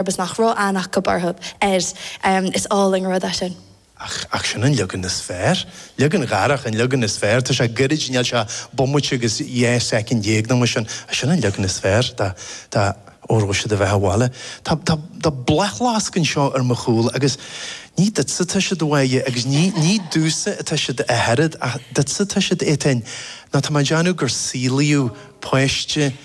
agus nach raibh ann ach gob orthub, air. Is álainn an rud é sin. Ach, ach sin an leagan is fearr. Leagan Dharach an leagan is fearr. Tá sé gairid, níl sé ach bomaite agus dhá soicind dhéag nó mar sin, ach sin an leagan is fearr, dá, dá, Óró Sé do Bheatha Abhaile. Tá, tá, tá bláthfhleasc anseo ar mo chúl agus ní duitse atá siad, a bháidhe, agus ní, ní duitse atá siad a Ghearóid, ach duitse atá siad, Étáin, nó tá mé ag déanamh gur saolaíodh páiste,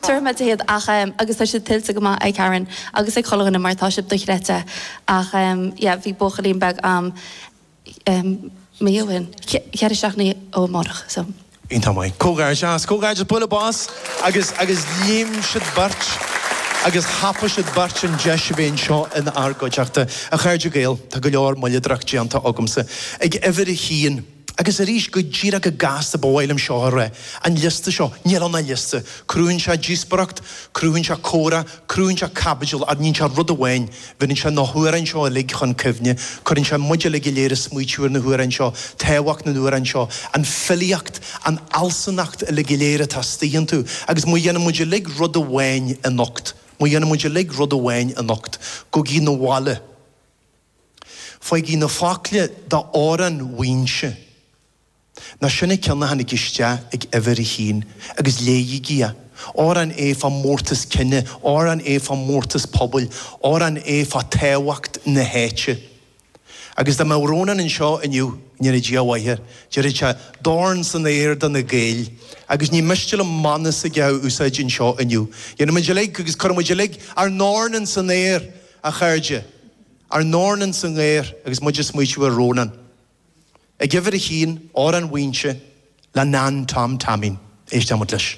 Tabharfaidh mé di iad ach em agus tá siad tuillte go maith ag Karen agus ag chuile dhuine mar tá siad dochreidte ach em yeah bhí buachaillín beag a'm em mí ó shin, cheithre seachtainí ó amárach so. Iontach maith. Comhghairdeas. Comhghairdeas. Bualadh bos. Agus, agus léim siad beirt agus thapaigh siad beirt an deis a bheith anseo in ár gcuideachta. A chairde Gael, tá go leor moilleadóireacht déanta agamsa. Ag uimhir a haon. Agus arís, go díreach go gasta, ba mhaith liom seo a rá, an liosta seo, níl ann ach liosta. Cruthaíonn sé díospoireacht, cruthaíonn sé comhrá, cruthaíonn sé caibidil, ach níonn sé rud amháin, bheireann sé na hamhráin seo uilig chun cuimhne, cuireann sé muid uilig go léir ag smaoitiú ar na hamhráin seo, tábhacht na n-amhrán seo, an filíocht, an fhealsunacht uilig go léir atá astuigh iontu. Agus má dhéanann muid uilig rud amháin anocht, má dhéanann muid uilig rud amháin anocht, gabhaigí 'na bhaile, Faighigí na focla d'amhrán Mhaínse, nó sin an cionn a tháinig isteach ag uimhir a haon, agus léighigí é. Amhrán é fá mhórtas cine, amhrán é fá mhórtas pobail, amhrán é fá tábhacht na háite. Agus dá mbeadh Rónán anseo inniu, go ndéana Dia a mhaith air, déarfadh sé, Dorn san aer do na Gaeil! Agus ní miste liom mana s'aige a úsáid anseo inniu. Dhéanfaimid uilig, agus cuirfimid uilig, ár ndorn ins an aer! A chairde, ár ndorn ins an aer agus muid ag smaoitiú ar Rónán, ag uimhir a haon, Amhrán Mhaínse, le Nan Tom Taimín. Éistfidh muid leis.